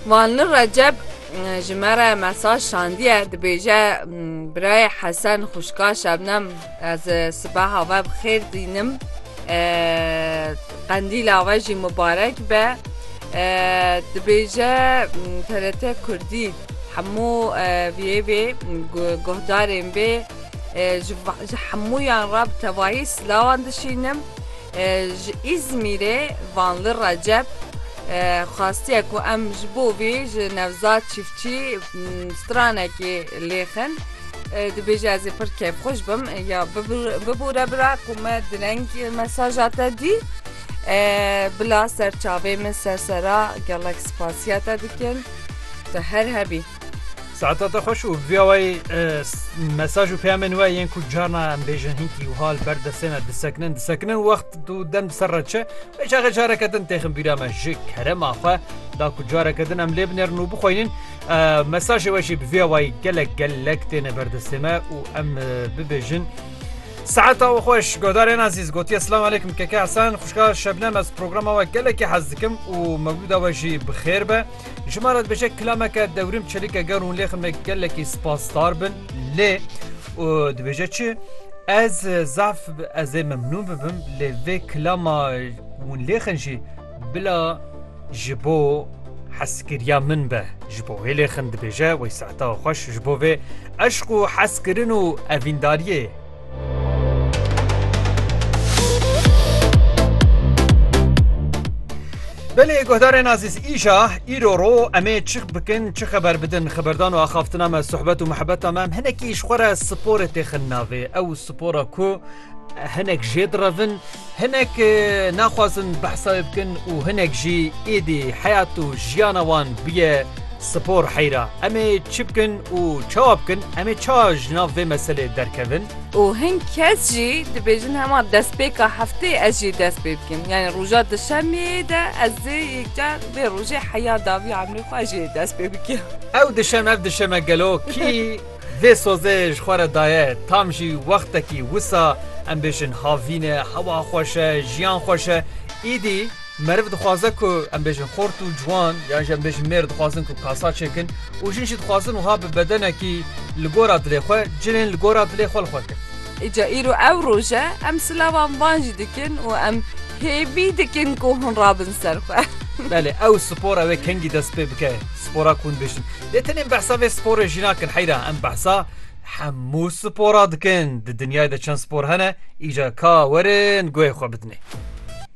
Vanli Recep ji me re mesaj şandiye dibêje birayê Hesen xwişka Şebnem ez sibeha we bi xêr dînim qendîla we jî mibarek be dibêje TRT Kurdî hemû vê vê guhdarên bê ji hemûyan re bi tevahî silawan dişînim. Ji Îzmîrê Vanli Recep xwestiye ku em ji bo vê ji Nevzad Çiftçî stranekê lêxin. Dibêje ez ê pir kêfxweş bim ya bibûre bira ku me direng mesaja te dî. Bila serçavê min sersera gelek spasiya te dikim. Tu her hebî. Saeta te xweş û vîya wayî mesaj û peyamên we yên ku carna em bêjin hinkî wiha li ber destê me disekinin disekinin wext û dem ser re çi vê çaxê careke din têxin bîra me ji kerema xwe da ku careke din em lê binêrin û bixwînin mesajê we jî bi vîya wayî gelek gelek têne berdestê me û em bibêjin Saeta û xweş godarên ezîz gotiye silam alêkim keke Hesen xuşka şebnem ez programa we gelekî hez dikim û mewlûda we jî bi xêr be. Ji me re dibêje kilameke dewrim çelike ger hûn lêxin me gelekî spasdar bin lê û dibêje çi ez zaf ez ê memnûn bibim lê vê kilama hûn lêxin jî bila ji bo heskiriya min be ji bo wê lêxin dibêje wey saeta xweş ji bo vê eşq û heskirin û evîndariyê Belê guhdarên azîz îja îro ro em ê çi bikin çi xeber bidin xeberdan û axaftina me sohbet û mihebeta me em hinekî ji xwe re sporê têxin navê ew spora ku hinek jê direvin Hinek naxwazin behsa wê bikin û hinek jî êdî heyat û jiyana wan bûye spor heyra. Em ê çi bikin û çawa bikin? Em ê çawa ji nav vê meselê derkevin? Û hin kes jî dibêjin hema destpêka hefteyê ez jî dest pê bikim. Yanî roja duşemeyê de ez ê yekcar vê rojê heya dawî emrê xwe jî dest pê bikim. Ew duşem ev duşem e gelo kî? Vê sozê ji xwe re daye tam jî wextekî wisa em bêjin havîn e, hewa xweş e, jiyan xweş e. Îdî meriv dixwaze ku em bêjin xort û ciwan yan jî em bêjin mêr dixwazin ku kasa çêkin û jin jî dixwazin wiha bi bedenekî li gora dilê xwe cinên li gora dilê xwe li xwe kin. Îca îro ew roj e em silavan van jî dikin û em hêvî dikin ku hûn rabin ser xwe. Belê ew spor e wê kengî dest pê bike spora ku hûn dibêjin Lê tenê em behsa vê sporê jî nakin heyra em behsa hemû spora dikin. Di dinyayê de çend spor hene îcar ka werin guhê xwe bidinê.